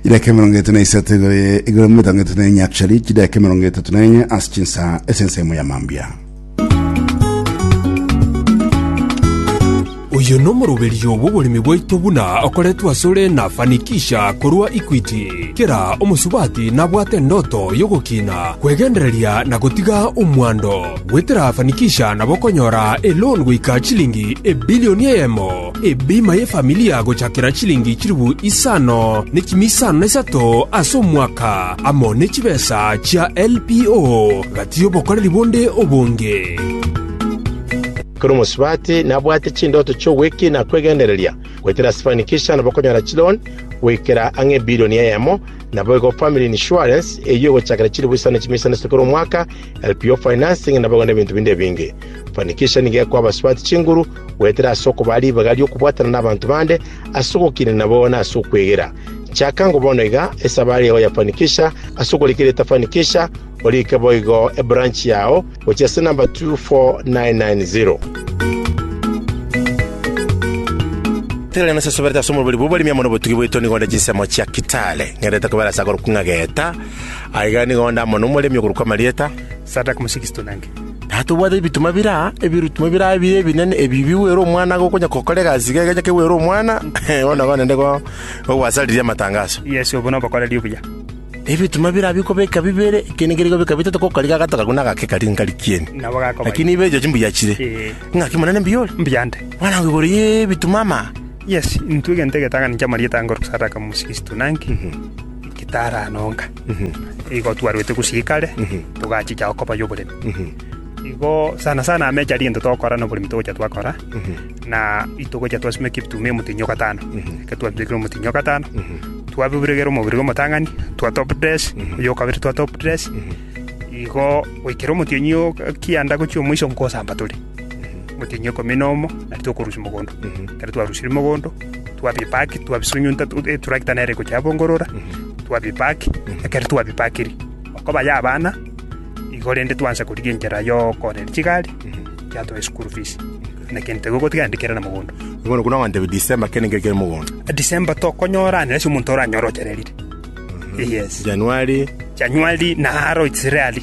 Chidaeka emerongo eto na isato igoro ye- igoro mirongo eto na enya chari chidaeka emerongo etatu na enye ase chinsa ase ensemo ya mambia Oyo nomoroberio bw'oboremi bwaito buna okoretwe asore na Fanikisha korwa Equity. Kera omosubati nabwate endoto y'ogokina, kwegendereria na gotiga omwando. Goetera Fanikisha nabo okonyora eloan goika chilingi ebilioni eyemo, ebima y'efamilia gochakera chilingi chilifu isano ne chimi isano na isato ase omwaka, amo ne chibesa chia LPO gati y'obokoreri bonde obonge. Ekero omosubati nabwate chindoto chi'ogwekina kw'egendereria, goetera ase Fanikisha nabo okonyora chiloan goikera ang'e ebilioni eyemo, naboigo family insurance, eyio egochakera chilifu isano ne chimi isano na isato kera omwaka, LPO Financing nabagwe nebinto binde ebinge. Fanikisha nigo ekoa abasubati chinguru goetera ase okobaa ribaga ri'okobwatana n'abanto bande, ase ogokinia nabo na ase okwegera. Chaka ngo bono iga esabari yao ya Fanikisha ase ogorika erieta Fanikisha, orike boigo ebranch yao gochia ase number 24990. Tigari nase soberete ase omorweri bw'oboremi amo nobotugi bwaito nigo onde chinsemo chia Kitale. Ng'endete kobera ase akorokwa ng'a Geta, Aiga nigo onde amo nomoremi okorokwa Marieta. Sadaka Mosigisto nenge? Tata obwate ebituma biraa, ebirutimo biraa ebiya ebinene, ebi bigwere omwana ake okonya kokora egasi iga egecha kegwere omwana, bono nabo naende igo ogwasaririe amatangaso. Yeso obo nobokoreri obuya. Ebituma biraa bikobeka bibere, ekeene kere kobeka bitato, gokori gagatogaku na agake kari nkari kieni. Nabo gakoba. Lakini ibe erio chimbuya chire. Ee. Ng'aki monene mbuya ore? Mbuya nde? Bwana ngo igoro y'ebituma ama. Yes, intwe egento egetang'ani kia Marieta angorokwa Sadaka Mosigisto nenge? Gitara nonga, igo twarwete gosiika are, togachicha okoboyia oboremi. Igo sana sana ameche aria egento togokora na oboremi togocha twakora, na itogocha twasima eketuma emotenyi o gatano, ekero twabirekire omotenyi o gatano, twabiregera omobere bw'omotang'ani, twa top dress, oyio o kabere twa top dress, igo goikera omotienyi o kianda gochia omoiso nkosamba tore. gotenenia ikomi na omo nari tokorusia mogondo ekero twarusirie mogondo twabipaki twabisunyunta eturakita nere egochi yabongorora twabipaki ekero twabipakiri okoba ya abana igo rende twansa korigia enchera yokoorera chigari yatoa eschool fees na egento igo gotiga naende kere na mogondo Bono buna oganteba December kende nkere kere mogondo. December tokonyora nere ase omonto oranyore ochererire yes Januari Januari naro it's rarely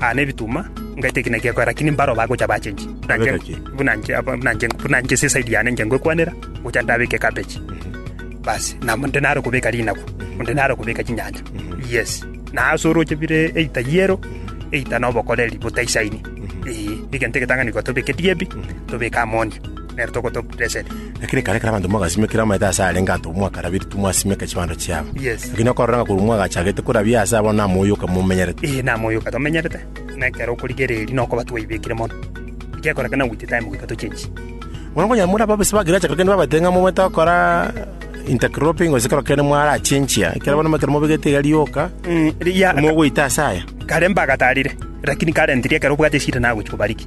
Aa nebituma, ngaita ekina giakoya, lakini mbaro bagocha bachenchi. Buna nche- Abeka ki? buna nche- aba- buna nche- buna nche ase eside yane inche ngwekwanera, gocha ndabeke cabbage. Basi, na onde nare kobeka rinagu, onde nare kobeka chinyanya. Yes. Na ase oroche bire eita yero, eita na obokoreri botaisaini. Ee, egento egetang'ani igo tobeke digebi, tobeke ammonia. nere togotoa blessed. Lakini kare kare abanto mogasime kera omaete ase arenge anto mwakarabirie timwasimeka chibando chiabo. Yes. Lakini okorora ng'a korwa mwagachagete korabia ase abwo namo oyoka momenyerete. Ee, namoyoka tomenyerete, na ekero okorigereria na okoba twaibekire mono. Gekorekana with time goika tochenchi. Bono konya more ababisa ba agriculture kende babaete ng'a momaete gokora intercropping gose kero kende mwarachenchia, ekero bono ekero mobegete iga rioka, Mm, ria- mogoita ase aya. kare mbagatarire, lakini kare ntiri ekero obwate eshida nagochi kobariki.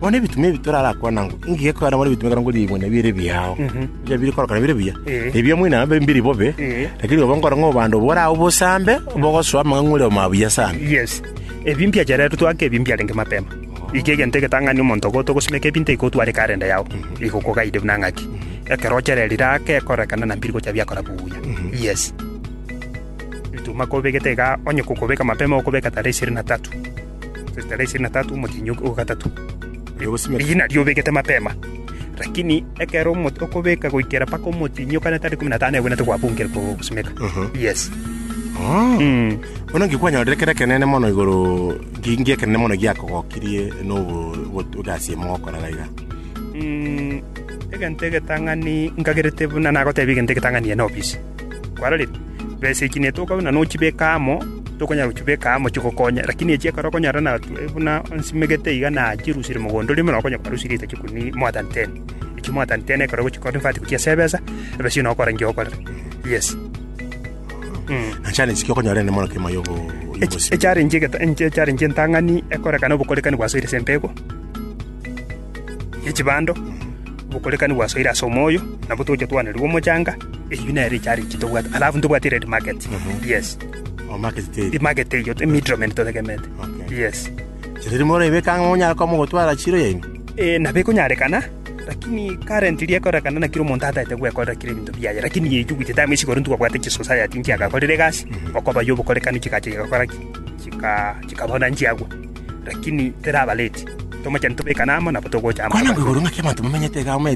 Bono ebitumia ebi torarakwane ang'o? Engaki ya korara bono ebitumia ekero nkoriigwa na bire biao, ebiya bire korokana bire buya, ebiya moino nabo mbiri bobe, lakini obo nkore ng'a obande obwo orabe bosambe, bogosoa amang'ang'u ore omabuya sambe. Yes. Ebi mbiacheretwe toake ebi mbiarenge mapema. Eki egento egetang'ani omonto ogo togosimeka ebi ntaigotwara ekarenda yao, igokogaide buna ng'aki. Ekero ochererire ake ekorekana na mbiri gocha biakora buya. Yes. Ebituma kobegete iga onye kokobeka mapema okobeka tarehe ishirini na tatu. Tarehe ishirini na tatu omotienyi o o gatato, Oyo ogosimeka. riina riobegete mapema, lakini ekero omo- okobeka goikera mpaka omotienyi o kane tarehe ikomi na tano egwenerete gwabunkire ko- gosimeka. Mhm. Yes. Oh. Mm. Bono nki kwanyorire kere ekenene mono igoro nki nki ekenene mono giakogokirie nobo bo- egasi emo gokora iga iga. Mm, egento egetang'ani nkagerete buna nagotebia egento egetang'ani ene ofisi. kwarorire, besa echi nigo tokagura na nochibeka amo, tokonyara gochibeka amo chigokonye. Lakini echi ekero okonyora na buna nsimegete iga na chirusiire mogondo oria omoroo, okonyora kwarusirie echi chikumi more than ten. Echi more than ten ekero ogochiconvert gochia ase ebesa, ebese eyi nogokora enki ogokorera. Yes. Na challenge ki okonyora ere mono kegima yogo Ech- yogosibwa? echallenge egeta- enche- echallenge entang'ani ekorekana obokorekani gwasoire ase empegu ye chibando, obokorekani bwasoire ase omoyo, nabo togochia twanerigwa omochanga, eyio nere echarity tobwate, alafu ntobwati red market, yes, Oh, market day. emarket eyio, emiddlemen totegemete, Okay. yes. Chiriri morebeka ang'e monyara koba mogotwara chiro yaino. Eh, nabo ekonyarekana, lakini currently ekorekana na kera omonto ataete gwekorera kera ebinto biaye, lakini eyio with time ase igoro ntwabwate chisociety nchiagakorire egasi, okoba yobokorekani chigacha chigakora ki, chika chikabana nchiagwa. Lakini terabareti, tomochani tobekane amo, nabo togocha amo Kwana abwo igoro ng'aki abanto bamenyete iga omanyete.